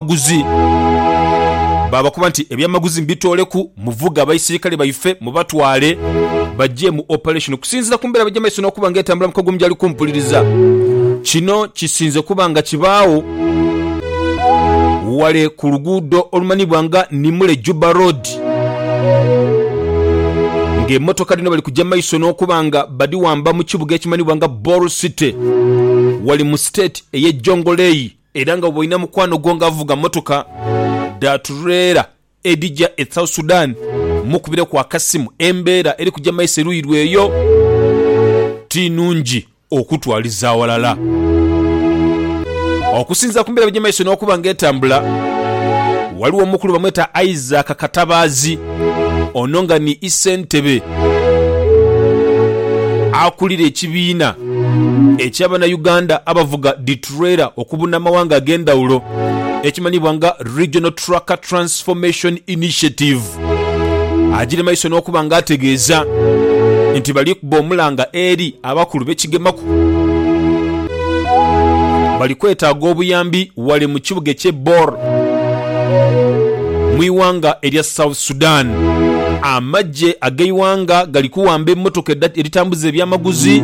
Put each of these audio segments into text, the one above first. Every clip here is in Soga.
eby'amaguzi. Baabakoba nti, Eby'amaguzi mubitooleku, muvuge abaisirikale baife mubatwale baje mu operation. Okusinziira ku mbeera bwegya mu maiso n'okuba nga etambula mu kagulumu gyali kumpuliriza, kino kisinze kuba nga kibaawo wale ku luguudo olumanhiibwa nga Nimule Juba Road ng'emmotoka dhino bali kugya mu maiso n'okuba nga badhiwamba mu kibuga ekimanhiibwa nga Bor City wali mu state ey'e Jonglei. Era nga bw'olina mukwano gwo nga avuga mmotoka dha tureela edhija e South Sudan, mmukubireku akasimu. Embeera eri kuja maiso eruuyi lwe eyo ti nungi okutwaliza aghalala. Okusinziira ku mbeera ebija maiso n'okuba nga etambula, ghaligho omukulu bamweta Isaac Katabaazi, ono nga ni Isentebe akulira ekibiina ekya Banauganda abavuga dhi Trailer okubuna amawanga ag'endhawulo ekimanhiibwa nga Regional Trucker Transformation Initiative agire maiso n'okuba nga ategeeza nti bali kuba omulanga eri abakulu be kigemaku bali kwetaaga obuyambi wale mu kibuga ekye Bor mu iwanga erya South Sudan. Amagye ag'eiwanga gali kuwamba emotoka edhitambuza ebyamaguzi.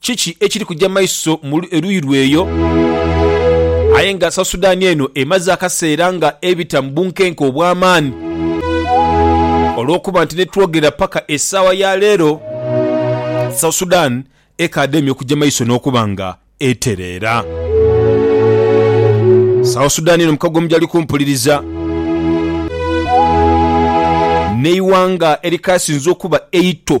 Kiki ekiri kuja maiso mulu eruyi lwe eyo? Aye nga South Sudan eno emaze akaseera nga ebita mu bunkenke obw'amaani, olw'okuba nti ni twogera paka esaawa ya leero, South Sudan ekaadhaimya okuja maiso n'okuba nga etereera. South Sudan eno mukago omujali kumpuliriza n'eighanga erikaasinze okuba eito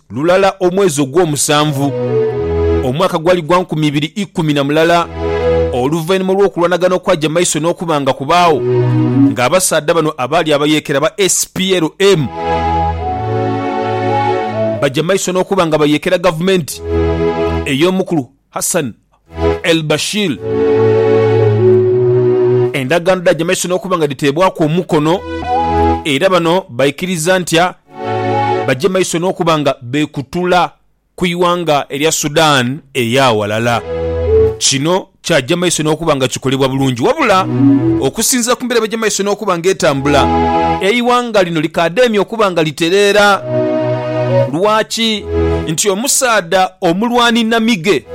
Lulala omwezi ogw'omusanvu, omwaka gwali gwa nkumi ibiri ikumi na mulala oluvainhuma olw'okulwanagana okwaja maiso n'okuba nga kubaagho, nga abasaadha bano abaali abayeekera ba SPLM baja maiso n'okuba nga bayeekera gavumenti ey'omukulu Hassan El Bashir. Endagaano dhaja maiso n'okuba nga dhiteebwaku omukono era bano baikiriza ntia baje maiso n'okuba nga beekutula ku ighanga erya Sudan ey'aghalala. Kino kyaja maiso n'okuba nga kikolebwa bulungi wabula okusinziira ku mbeera bweja maiso n'okuba nga etambula, eighanga lino likaademya okuba nga litereera. Lwaki? Nti omusaadha omulwani namige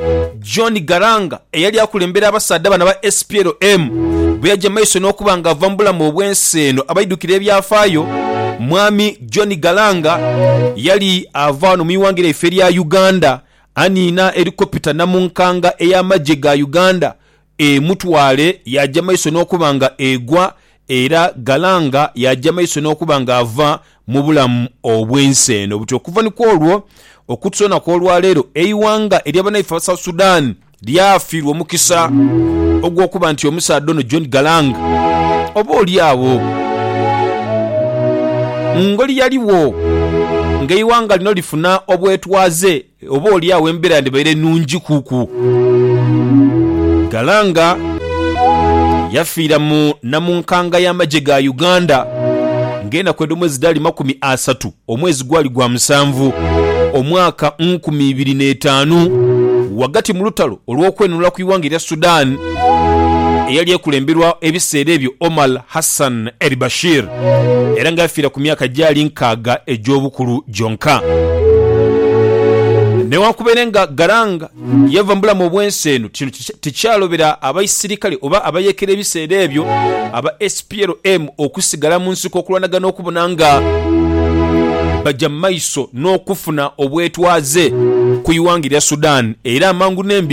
John Garanga eyali akulembera abasaadha bano aba SPLM bweyaja maiso n'okuba nga ava mu bulamu obw'ensi eno, abaidhukira ebyafaayo Mwami John Garanga yali ava wano mu ighanga lyaife erya Uganda aniina Helicopter namunkanga ey'amagye ga Uganda Emutwale yaaja maiso n'okuba nga egwa, era Galanga yaaja maiso n'okuba nga ava mu bulamu obw'ensi eno. Buti okuva ni kw'olwo okutusoona kw'olwa leero, eighanga erya banaife aba South Sudan lyafiirwa omukisa ogw'okuba nti omusaadha ono John Galanga oba oli agho ngoli yaligho nga eighanga lino lifuna obwetwaze. Oba oli agho embera yandibaire nungi ku ku. Galanga yafiira mu namunkanga ya magye ga Uganda nga enaku edho mwezi dhaali makumi asatu omwezi gwali gwa musanvu omwaka nkumi ibiri n'etaanu ghagati mu lutalo olw'okwenunula ku ighanga erya Sudan eyali ekulemberwa ebiseera ebyo Omar Hassan el-Bashir. era nga yafiira ku myaka gyali nkaaga egy'obukulu gyonka. Newankubere nga ghalanga yava mu bulamu obw'ensi eno, kino tikyalobera abaisirikale oba abayeekera ebiseera ebyo aba SPLM okusigala mu nsiko okulwanagana okubona nga baja mu maiso n'okufuna obwetwaze ku ighanga erya Sudan era amangu n'embiro.